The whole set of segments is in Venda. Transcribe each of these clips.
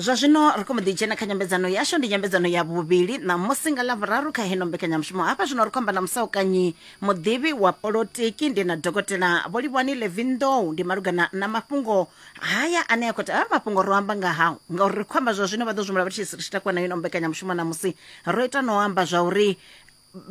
zwa zwino ri khou mbo ḓi dzhena kha nyambedzano yashu ndi nyambedzano ya vhuvhili ṋamusi nga ḽa vhuraru kha heno mbekanyamushumo hafha zwino ri khou amba na musaukanyi muḓivhi wa polotiki ndi na dokotela vholivhani levindow ndi malugana na mafhungo haya ane a khou ta mafhungo ro amba nga hao ngauri ri khou amba zwa zwino vha ḓo zwimula vha tshi ri tshi takuwa na ino mbekanyamushumo ṋamusi ro ita no amba zwa uri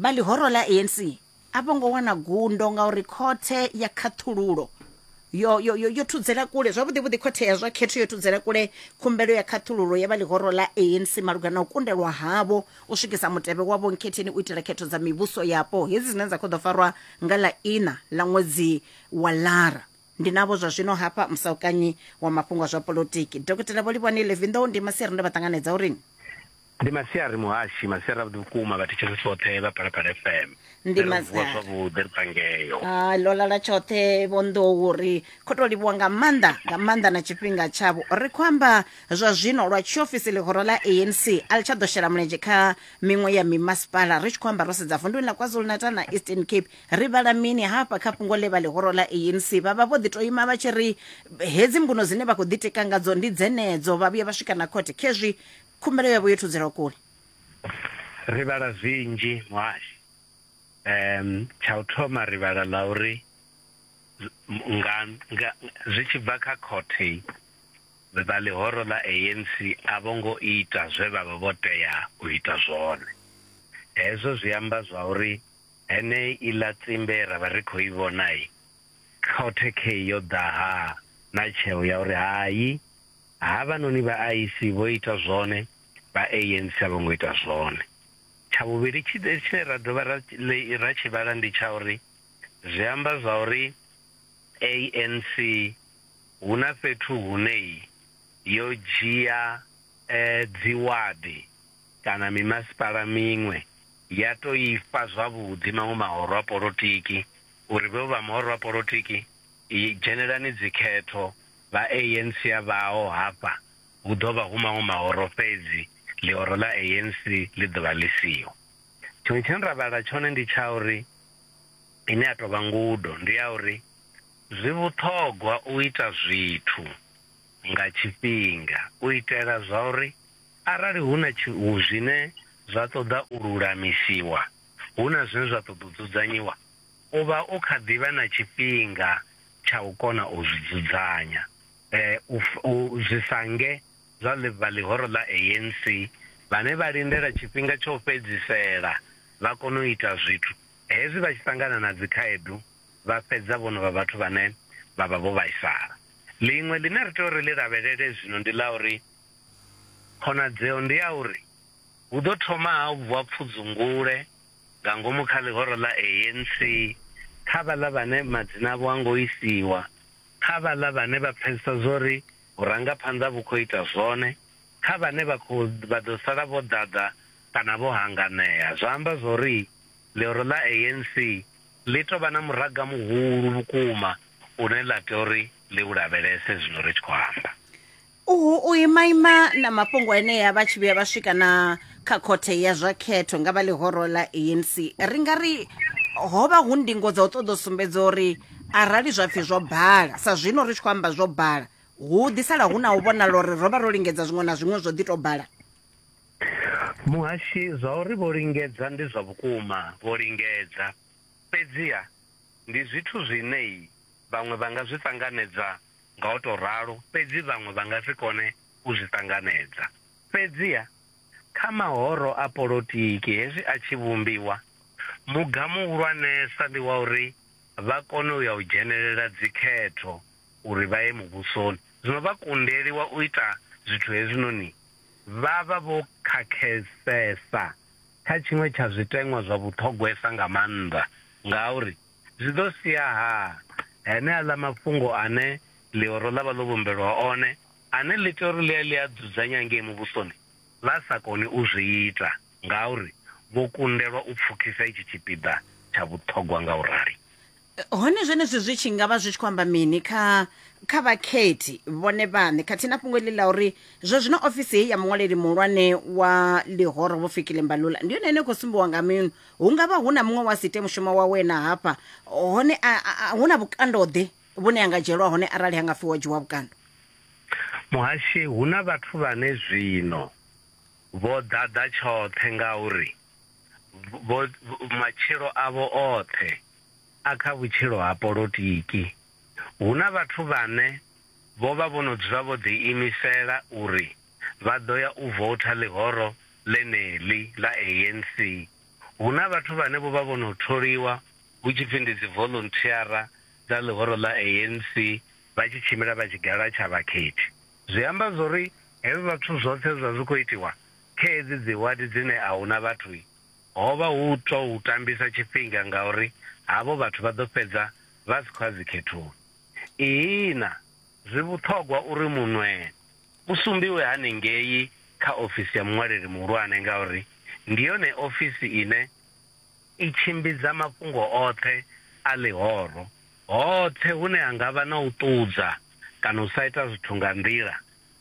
vha ḽihoro ḽa anc a vho ngo wana gundo ngauri khothe ya khaṱhululo yo, yo, yo, yo thudzela kule zwavhuḓi vhuḓi khothe ya zwa khetho yo thudzela kule khumbelo ya khaṱhululo ya vha ḽihoro ḽa anc malugana na u kundelwa havho u swikisa mutevhe wa vhonkhetheni u itela khetho dza mivhuso yapo hedzi dzine dza khou ḓo farwa nga ḽa ina ḽa ṅwedzi wa lara ndi navho zwa zwino hafha musaukanyi wa mafhungo a zwa polotiki dokotela vho livhani levinḓou ndi masiri nda vha ṱanganedza uri ndi masiari muhashi masiari avhuḓi vhukuma vhathetshelesi tshoṱhe vha phalaphala fm ndi masiari zwavhuḓi ri pangeyo ha ḽo lala tshoṱhe vho nḓou ri khou tou livhuwa nga maanḓa nga maanḓa na tshifhinga tshavho ri khou amba zwa zwino lwa tshiofisi ḽihoro ḽa anc a ḽi tsha ḓo shela mulenzhe kha miṅwe ya mimasipala ri tshi khou amba ro sedza vunduni ḽa kwazulu natal na eastern cape ri vhala mini hafha kha fhungo ḽe vha ḽihoro ḽa anc vha vha vho ḓi tou ima vha tshi ri hedzi mbuno dzine vha khou ḓitika ngadzo ndi dzenedzo vha vhuya vha swika na khothe khezwi Khumbelo yavho yo thudzelwa kule. Ri vhala zwinzhi muhasho. Umm tsha u thoma ri vhala ḽa uri nga nga zwi tshi bva kha khothe vha ḽihoro ḽa ANC a vho ngo ita zwe vha vha vho tea u ita zwone. Hezwo zwi amba zwa uri henei iḽa tsimbe ra vha ri khou i vhona khothe khei yo ḓa ha na tsheo ya uri hai, Havhanoni vha IEC vho ita zwone, vha ANC a vho ngo ita zwone. Tsha vhuvhili tshine ra dovha ra ra tshi vhala ndi tsha uri zwi amba zwa uri ANC hu na fhethu hune yo dzhia dziwadi kana mimasipala miṅwe ya tou i fha zwavhuḓi maṅwe mahoro a polotiki uri vhe vha mahoro a polotiki dzhenelani dzikhetho. vha ANC a vhaho hafha hu ḓo vha hu maṅwe mahoro fhedzi ḽihoro ḽa ANC ḽi ḓo vha ḽi siho. Tshiṅwe tshine ra vhala tshone ndi tsha uri, ine ya tou vha ngudo, ndi ya uri zwi vhuṱhogwa u ita zwithu nga tshifhinga u itela zwa uri arali hu na zwine zwa ṱoḓa u lulamisiwa, hu na zwine zwa ṱoḓa u dzudzanyiwa. u vha u kha ḓi vha na tshifhinga tsha u kona u zwi dzudzanya. U zwi sa nge zwa vha ḽihoro ḽa ANC vhane vha lindela tshifhinga tsha u fhedzisela vha kone u ita zwithu, hezwi vha tshi ṱangana na dzikhaedu vha fhedza vho no vha vhathu vhane vha vha vho vhaisala. Ḽiṅwe ḽine ri tea uri ḽi lavhelele zwino ndi ḽa uri khonadzeo ndi ya uri hu ḓo thoma ha vuwa pfudzungule. nga ngomu kha ḽihoro ḽa ANC, kha vhaḽa vhane madzina avho a ngo isiwa, kha vhaḽa vhane vha pfesesa zwori vhurangaphanḓa vhu khou ita zwone, kha vhane vha khou vha ḓo sala vho ḓaḓa kana vho hanganea. Zwa amba zwori ḽihoro ḽa ANC ḽi tou vha na muraga muhulu vhukuma une ḽa tea uri ḽi u lavhelese zwino ri tshi khou amba. Uhu u imaima na mafhungo enea vha tshi vhuya vha swika na kha khothe ya zwa khetho nga vha ḽihoro ḽa ANC ri nga ri ho vha hu ndingo dza u ṱoḓa u sumbedza uri arali zwa pfhi zwo bala sa zwino ri tshi khou amba zwo bala hu ḓi sala hu na u vhonala uri ro vha ro lingedza zwiṅwe na zwiṅwe zwo ḓi tou bala Muhashi, zwa uri vho lingedza ndi zwa vhukuma, vho lingedza. Fhedziha ndi zwithu zwine vhaṅwe vha nga zwi ṱanganedza nga u tou ralo, fhedzi vhaṅwe vha nga si kone u zwi ṱanganedza. Fhedziha, kha mahoro a polotiki hezwi a tshi vhumbiwa, muga muhulwanesa ndi wa uri vha kone u ya u dzhenelela dzikhetho uri vha ye muvhusoni. Zwino vha kundeliwa u ita zwithu hezwinoni vha vha vho khakhesesa kha tshiṅwe tsha zwiteṅwa zwa vhuṱhogwesa nga maanḓa, ngauri zwi ḓo sia-ha heneaḽa mafhungo ane ḽihoro ḽa vha ḽo vhumbelwa one, ane ḽi tea uri ḽi a ḽi a dzudzanya ngei Muvhusoni, vha sa koni u zwi ita ngauri vho kundelwa u pfukhisa itshi tshipiḓa tsha vhuṱhogwa nga u rali? Hone zwenezwi zwi tshi nga vha zwi tshi khou amba mini kha kha vhakhethi vhone vhaṋe khathihi na fhungo heḽi ḽa uri zwa zwino ofisi heyi ya muṅwaleli muhulwane wa ḽihoro Vho Fikile Mbalula ndi yone ine khou sumbiwa nga minu hu nga vha hu na muṅwe wa si ite mushumo wa wena hafha hone a- a- a- hu na vhukandoḓe vhune a nga dzhielwa hone arali ha nga pfi wo dzhiwa vhukando muhashi hu na vhathu vhane zwino vho ḓaḓa tshoṱhe ngauri vho vho- matshilo avho oṱhe a kha vhutshilo ha polotiki hu na vhathu vhane vho vha vho no dzula vho ḓiimisela uri vha ḓo ya u voutha ḽihoro ḽeneḽi ḽa ANC. Hu na vhathu vhane vho vha vho no tholiwa hu tshi pfi ndi dzivoḽunthiara dza ḽihoro ḽa ANC vha tshi tshimbila vha tshigala tsha vhakhethi. Zwi amba zwo ri hezwo zwithu zwoṱhe zwe zwa zwi khou itiwa kha hedzi dziwadi dzine a hu na vhathu, ho vha hu u tou tambisa tshifhinga ngauri havho vhathu vha ḓo fhedza vha si khou ya dzikhethoni. Ihina! Zwi vhuṱhogwa uri munwee u sumbiwe hanengei kha ofisi ya muṅwaleli muhulwane ngauri ndi yone ofisi ine i tshimbidza mafhungo oṱhe a ḽihoro. Hoṱhe hune ha nga vha na u ṱudza kana u sa ita zwithu nga nḓila,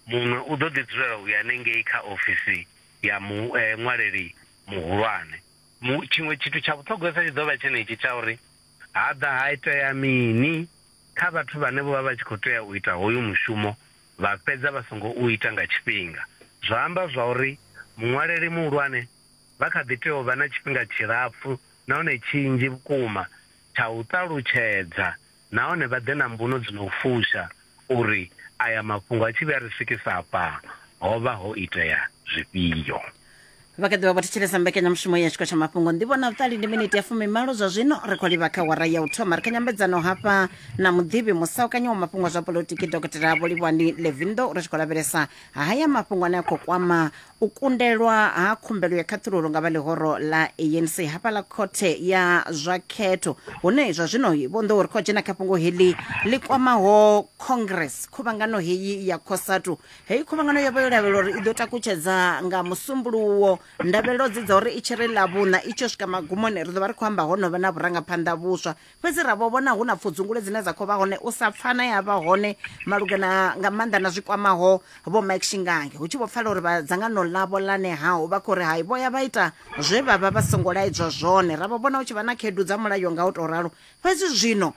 munwe u ḓo ḓi dzulela u ya hanengei kha ofisi ya muṅwaleli muhulwane. Tshiṅwe tshithu tsha vhuṱhogwesa tshi ḓo vha tshenetshi tsha uri ha ḓa ha itea mini. kha vhathu vhane vho vha vha tshi khou tea u ita hoyu mushumo vha fhedza vha songo u ita nga tshifhinga, zwa amba zwauri muṅwaleli muhulwane vha kha ḓi tea u vha na tshifhinga tshilapfu nahone tshinzhi vhukuma tsha u ṱalutshedza nahone vha ḓe na mbuno dzi no fusha uri aya mafhungo a tshi vhuya a ri swikisa afha ho vha ho itea zwifhio. vha kha ḓivha vho thetshelesa mbekanyamushumo ya tshiko tsha mafhungo ndivho na vhuṱali ndi miniti ya fumimalo zwa zwino ri khou livha kha wara ya u thoma ri kha nyambedzano hafha na muḓivhi musaukanyi wa mafhungo a zwa polotiki dokotela vholivhani levindo ri tshi khou lavhelesa haya mafhungo ane a khou kwama u kundelwa ha khumbelo ya khaṱhululo nga vha ḽihoro ḽa anc hafha ḽa khothe ya zwa khetho hune zwa zwino vho nḓou ri khou dzhena kha fhungo heḽi ḽi kwamaho congress khuvhangano heyi ya cosatu heyi khuvhangano yo vha yo lavhelela uri i ḓo takutshedza nga musumbuluwo ndavhelelo dzi dza uri i tshi ri ḽavhuṋa i tshi swika magumoni ri ḓo vha ri khou amba ho no vha na vhurangaphanḓa vhuswa fhedzi ra vho vhona hu na pfudzungule dzine dza khou vha hone u sa pfana ya vha hone malugana nga maanḓa na zwi kwamaho vho mike shingange hu tshi vho pfala uri vha dzangano ḽavho ḽa nehaho vha khou ri hai vho ya vha ita zwe vha vha vha songo laedzwa zwone ra vho vhona hu tshi vha na khaedu dza mulayo nga u tou ralo fhedzi zwino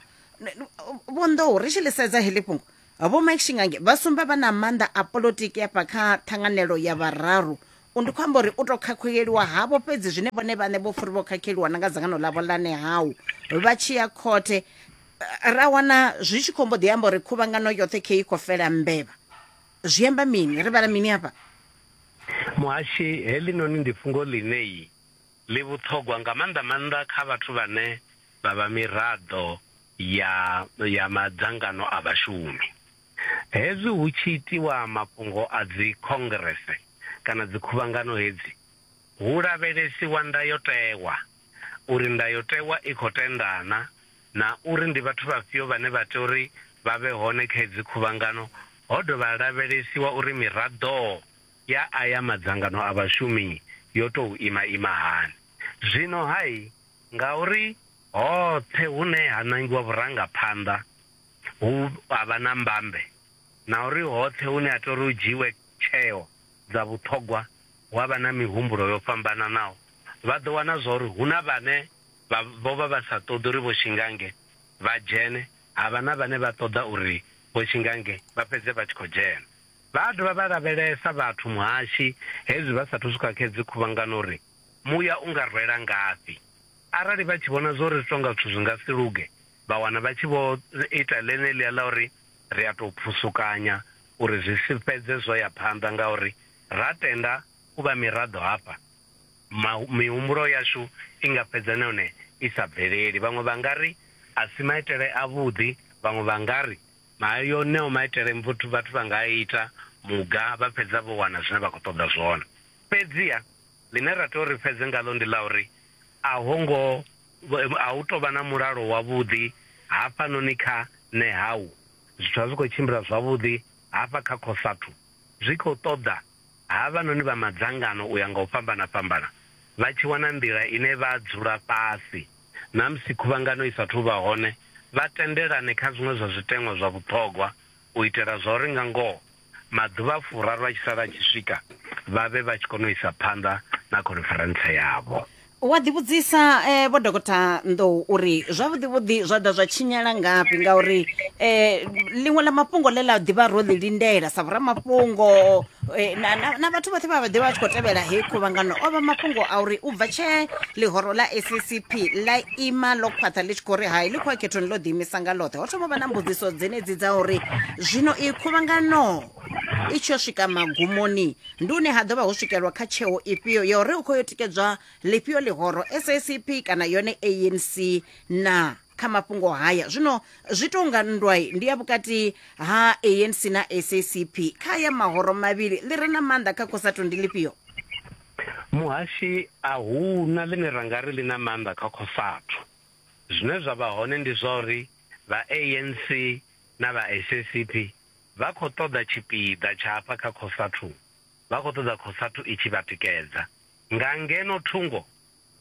vhonḓoho ri tshi ḽi sedza heḽi fhungo Vho Mike Shingange vha sumba vha na maanḓa a polotiki afha kha ṱhanganelo ya vhararu. U ndi khou amba uri u tou khakhuleliwa havho fhedzi zwine vhone vhaṋe vho furi vho khakheliwa na nga dzangano ḽavho ḽa Nehau vha tshi ya khothe ra wana zwi tshi khou mbo ḓi amba uri khuvhangano yoṱhe khe i khou fela mbevha. Zwi amba mini? Ri vhala mini afha? Muhashi, heḽinoni ndi fhungo ḽine ḽi vhuṱhogwa nga maanḓa-maanḓa kha vhathu vhane vha vha miraḓo ya ya madzangano a vhashumi. Hezwi hu tshi itiwa mafhungo a dzikhongrese kana dzikhuvhangano hedzi, hu lavhelesiwa ndayotewa, uri ndayotewa i khou tenda na, na uri ndi vhathu vhafhio vhane vha tea uri vha vhe hone kha hedzi khuvhangano, ho dovha ha lavhelesiwa uri miraḓo ya aya madzangano a vhashumi yo tou ima-ima hani. Zwino-ha, Ngauri hoṱhe hune ha nangiwa vhurangaphanḓa hu a vha na mbambe, na uri hoṱhe hune ha tea uri hu dzhiiwe tsheo dza vhuṱhogwa hu a vha na mihumbulo yo fhambananaho. Vha ḓo wana zwa uri hu na vhane vha vho vha vha sa ṱoḓi uri Vho Shingange vha dzhene, ha vha na vhane vha ṱoḓa uri Vho Shingange vha fhedze vha tshi khou dzhena. Vha a dovha vha lavhelesa vhathu, muhashi, hezwi vha sa athu swika kha hedzi khuvhangano uri Muya u nga rwela ngafhi? Arali vha tshi vhona zwa uri zwi tou nga zwithu zwi nga si luge, vha wana vha tshi vho ita ḽeneḽia ḽa uri ri a tou phusukanya uri zwi si fhedze zwo ya phanḓa ngauri ra tenda u vha miraḓo hafha, mihumbulo yashu i nga fhedza na yone i sa bveleli. Vhaṅwe vha nga ri, A si maitele avhuḓi. Vhaṅwe vha nga ri, Ayo eneo maitele vhathu vha nga a ita muga vha fhedza vho wana zwine vha khou ṱoḓa zwone. Fhedziha ḽine ra tea uri ri fhedze ngaḽo ndi ḽa uri a ho ngo a hu tou vha na mulalo wavhuḓi hafhanoni kha Nehau. Zwithu a zwi khou tshimbila zwavhuḓi hafha kha Cosatu. Zwi khou ṱoḓa havhanoni vha madzangano u ya nga u fhambana-fhambana vha tshi wana nḓila ine vha dzula fhasi na musi khuvhangano i sa athu u vha hone vha tendelane kha zwiṅwe zwa zwiteṅwa zwa vhuṱhogwa u itela zwauri nga ngoho maḓuvha a furaru a tshi sala a tshi swika, vha vhe vha tshi kona u isa phanḓa na khoniferentse yavho. Wa ḓivhudzisa e, Vho Dokotha Nḓou uri zwavhuḓivhuḓi zwa ḓa zwa tshinyala ngafhi ngauri e, ḽiṅwe ḽa mafhungo ḽe ḽa ḓivha ro ḽi lindela sa vhoramafhungo e, na, na, na vhathu vhoṱhe vha vha ḓivha vha tshi khou tevhela heyi khuvhangano o vha mafhungo a uri u bva tshee ḽihoro ḽa SACP ḽa ima ḽo khwaṱha ḽi tshi khou ri hai ḽi khou a khethoni ḽo ḓiimisa nga ḽoṱhe ho thoma vha na mbudziso dzenedzi dza uri zwino i khuvhangano i tshi yo swika magumoni ndi une ha ḓo vha ho swikelwa kha tsheo ifhio ya uri u khou yo tikedzwa ḽifhio ḽihoro sacp kana yone anc na kha mafhungo haya zwino zwi tou nga nndwai ndi ya vhukati ha anc na sacp kha ya mahoro mavhili ḽi re na maanḓa kha khosato ndi ḽifhio Muhashi, A hu na ḽine ra nga ri ḽi na maanḓa kha Cosatu. Zwine zwa vha hone ndi zwa uri vha ANC na vha SACP vha khou ṱoḓa tshipiḓa tsha hafha kha Cosatu, vha khou ṱoḓa Cosatu i tshi vha tikedza. Nga ngeno thungo,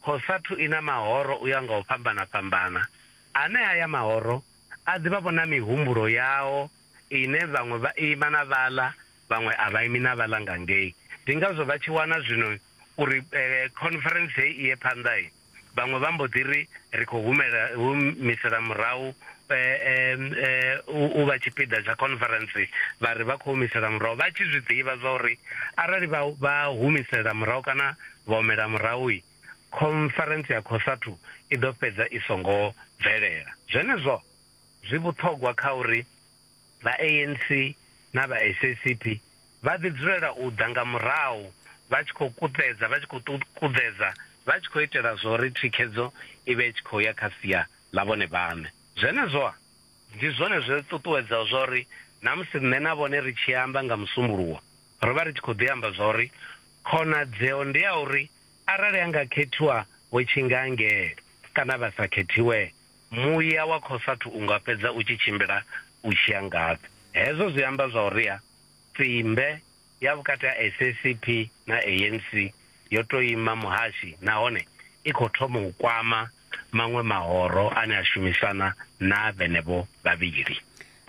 Cosatu i na mahoro u ya nga u fhambana-fhambana, ane haya mahoro a ḓivha-vho na mihumbulo yao ine vhaṅwe vha ima na vhaḽa vhaṅwe a vha imi na vhaḽa nga ngei. Ndi ngazwo vha tshi wana zwino uri khonferentse hei i ye phanḓa, vhaṅwe vha mbo ḓi ri, Ri khou humisela murahu u vha tshipiḓa tsha khonferentse. Vha ri vha khou humisela murahu, vha tshi zwi ḓivha zwa uri arali vha humisela murahu kana vha humela murahu, khonferentse ya Khosathu i ḓo fhedza i songo bvelela. Zwenezwo zwi vhuṱhogwa kha uri Vha ANC na vha SACP vha ḓi dzulela u ḓa nga murahu vha tshi khou kuṱedza, vha tshi khou ṱuṱukuḓedza, vha tshi khou itela zwo ri thikhedzo i vhe i tshi khou ya kha sia ḽa vhone vhaṋe. Zwenezwo-a? Ndi zwone zwi ri ṱuṱuwedzaho zwa uri na musi nṋe na vhone ri tshi amba nga Musumbuluwo, ro vha ri tshi khou ḓi amba zwa uri khonadzeo ndi ya uri arali ha nga khethiwa Vho Tshingangele kana vha sa khethiwee, Muya wa khosathu u nga fhedza u tshi tshimbila u tshi ya ngafhi? Hezwo zwi amba zwauriha tsimbe ya vhukati ha SACP na ANC yo tou ima muhashi nahone i khou thoma u kwama maṅwe mahoro ane a shumisana na vhenevho vhavhili.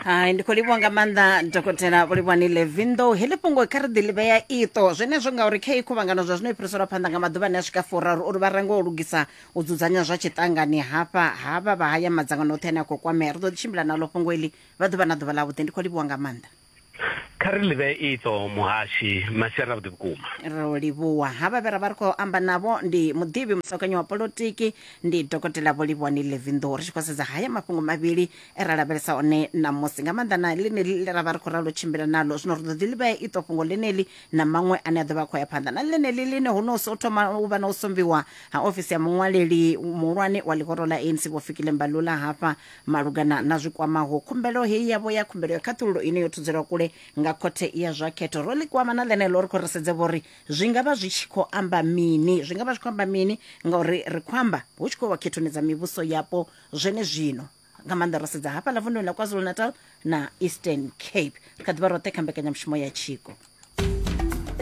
hai ndi khou livhuwa nga maanḓa dokotela vhulivhani levindo heḽi fhungo kha ri ḓi ḽi vhea iṱo zwenezwo ngauri kha i khuvhangano zwa zwino i fhiriselwa phanḓa nga maḓuvha ane a swika furaru uri vha range u lugisa u dzudzanya zwa tshiṱangani hafha havha vha haya madzangano oṱhe ane a khou kwamea ri ḓo ḓi tshimbila naḽo fhungo iḽi vha ḓuvha na ḓuvha ḽavhuḓi ndi khou livhuwa nga maanḓa kha ri ḽi vhee iṱo muhashi masiari avhuḓi vhukuma ro livhuwa havha vhe ra vha ri khou amba navho ndi muḓivhi musakanyi wa polotiki ndi dokotela vhulivhani levindo ri tshi khou sedza haya mafhungo mavhili e ra lavhelesa one ṋamusi nga maanḓa na ḽeneḽi ḽe ra vha ri khou ralo tshimbila naḽo zwino ri ḓo ḓi livhea iṱo fhungo ḽeneḽi na maṅwe ane a ḓo vha a khou ya phanḓa na ḽeneḽi ḽine ho no so thoma u vha na u sombiwa ha ofisi ya muṅwaleli muhulwane wa ḽihoro ḽa anc vho fikile mbalula hafha malugana na zwi kwamaho khumbelo heyi yavho ya khumbelo ya khaṱhululo ine yo thudzelwa kule nga khothe ya zwa khetho ro ḽi kwama na ḽeneḽo ri khou ri sedze vhori zwi nga vha zwi tshi khou amba mini zwi nga vha zwi khou amba mini ngauri ri khou amba hu tshi khou wa khethoni dza mivhuso yapo Zwenezwino, nga maanḓa ro sedza hafhaḽa vunḓuni ḽa KwaZulu-Natal na Eastern Cape, ri kha ḓi vha roṱhe kha mbekanyamushumo ya tshiko.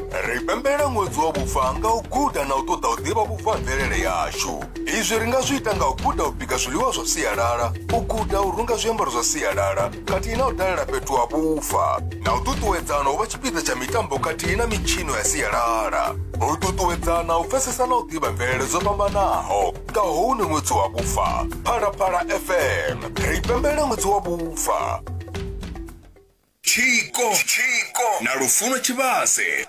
Ri pembela ṅwedzi wa vhufa nga u guda na u ṱoḓa u ḓivha vhufa ha mvelele yashu. Izwi ri nga zwi ita nga u guda u bika zwiḽiwa zwa sialala, u guda u runga zwiambaro zwa sialala khathihi na u dalela fhethu ha vhufa, na u ṱuṱuwedzana u vha tshipiḓa tsha mitambo khathihi na mitshino ya sialala, u ṱuṱuwedzana u pfesesa na u ḓivha mvelele dzo fhambanaho. nga hone ṅwedzi wa vhufa phalaphala fm ri pembela ṅwedzi wa vhufa tshiko tshiko na lufuno tshivhase